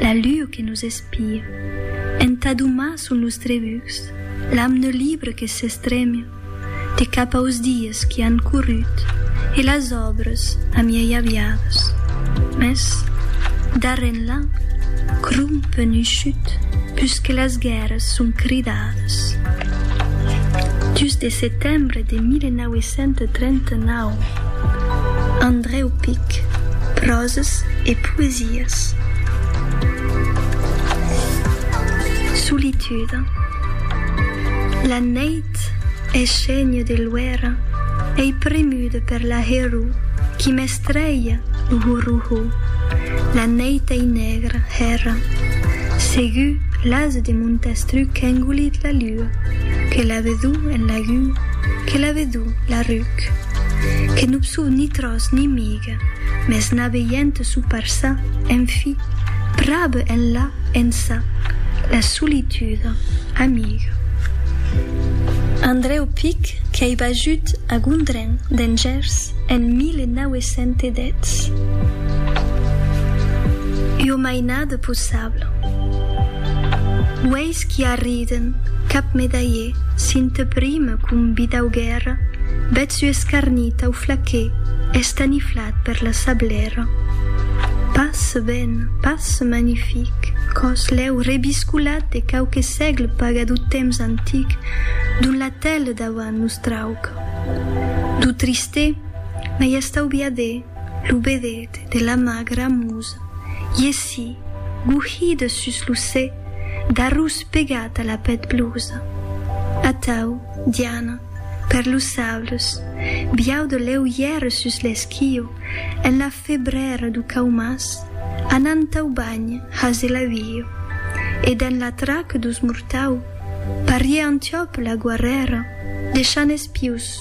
La lua que nos espia. Entà domar sul nòstre vuc. L'amne libre que s'estremia. De cap aus dies qui an corrut e las òbres amiei aviadas. Mès, darrèr enlà, crum penushut, pus que las guèrras son cridadas. Dus de setembre de 1900. 1939, Andrèu Pic, Pròses e poesias. Solitude La neit es chègne de luèra, ei premuda per la herror qui m'estrelha lo horror-ho, la neit ei nègra, hèrra, segur l'ase de Montestruc qu'engolit la luna. rua. Que la vedu en lagu, que la vedu la ruc. Que non sou ni tròç ni miga, mès n'a veient sou parçà, en fi, prabe enlà, ençà, la solituda, amiga. Andrèu Pic qu'ei bajut a Gondren d'en Gèrs en 1910. Ua mainada possibla. Aqueis qui arriden, cap medalhé, s'in te prime com bidau guèrra, bèth su escarnit tau flaqué, estaniflat per la sablèra. Pas ben, pas magnific, còs lèu rebiscolat de quauque sègle paga dau temps antic, dont la tèle dauant nos trauc. Dau tristè, mai estauviadè, lo bedet de la magra musa. Cat, iesi, gouhida sus lo cè, d'arròs pegat a la pèth blusa. Atau, Diana, per los saules, biau de lèu ièr sus l'esquio, en la febrèra du Caumàs, anant au banh hase la uio. E dens la trac dus mortau, pariè Antiòp la guarrèra, deishant espius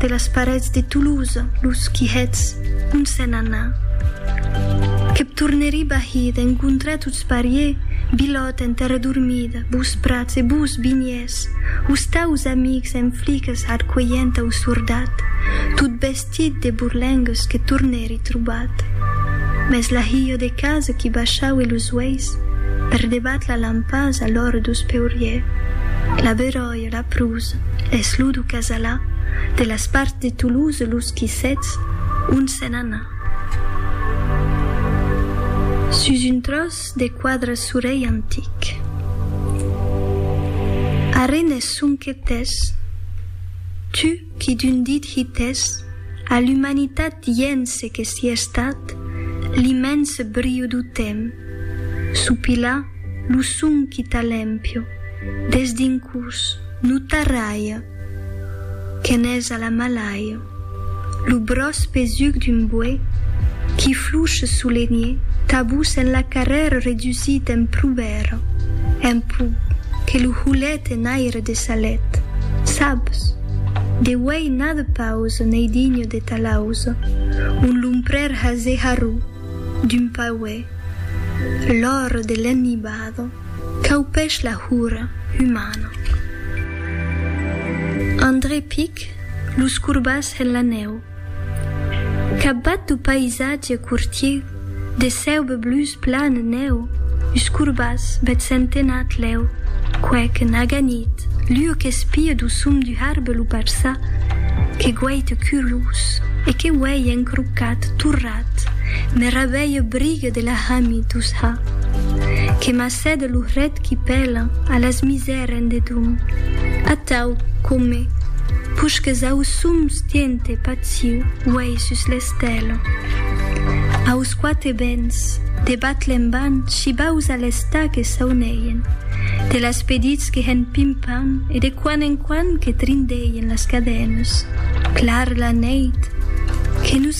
De las parets de Toulouse los quihets ont s'en anà. Que p' tornerí bahí d'encontrar tots parier Bilòt enter redormid bous prats e bous vinhers ous taus amics en fliques arcuelhent au sordat tot vestit de borlengues que tornèri trobat. Mès la hilha de casa qui baishaue los uelhs per debat la lampasa l'òre d'os peuriers. La beròia. de la Pruz, es lo du Casalà, de las parts de Toulouse los qui sètz ont se n'ana. Sus un tròç de quadre surei antic. Arren es sonque tès, tu qui d'un dit hitès a l'umanitat dient se que si estat l'immens briu du temps, sopilar lo son qui t'a l'empio, Des dincús no tarralha que n'es a la malaia lo bròç pesuc d'un boè qui fluche sous les niers tabús en la carrèra redusit en prubèra en pó que lo holet en aire de sa let sabs de uèi n'a de pausa n'ei digne de ta lausa un lomprèr hase harró d'un pauè l'ora de l'ennibada. Caupèch la hura umana. André pic los corbats en la nèu. Capbat du païsatge cortier de cèube blus plan nèu us corbats bèth centenat lèu quèque n'aga nit l'ua qu'espie du sum du harbe lo parçar que guaite curlous e que uèi encrocat torrat Aviat me rabeie brigue de la hami dous ha que m'acède lo hret qui pèla a las misèren de dum. Atau, come, pusques ausum stiente patiu uèi sus l'estèla. Aus quate bens, de Batlemban shibaus a l'està que sauneien, de las pedits que hèn pim-pam e de quan en quan que trindeien las cadènes. Clar la neit, que nous.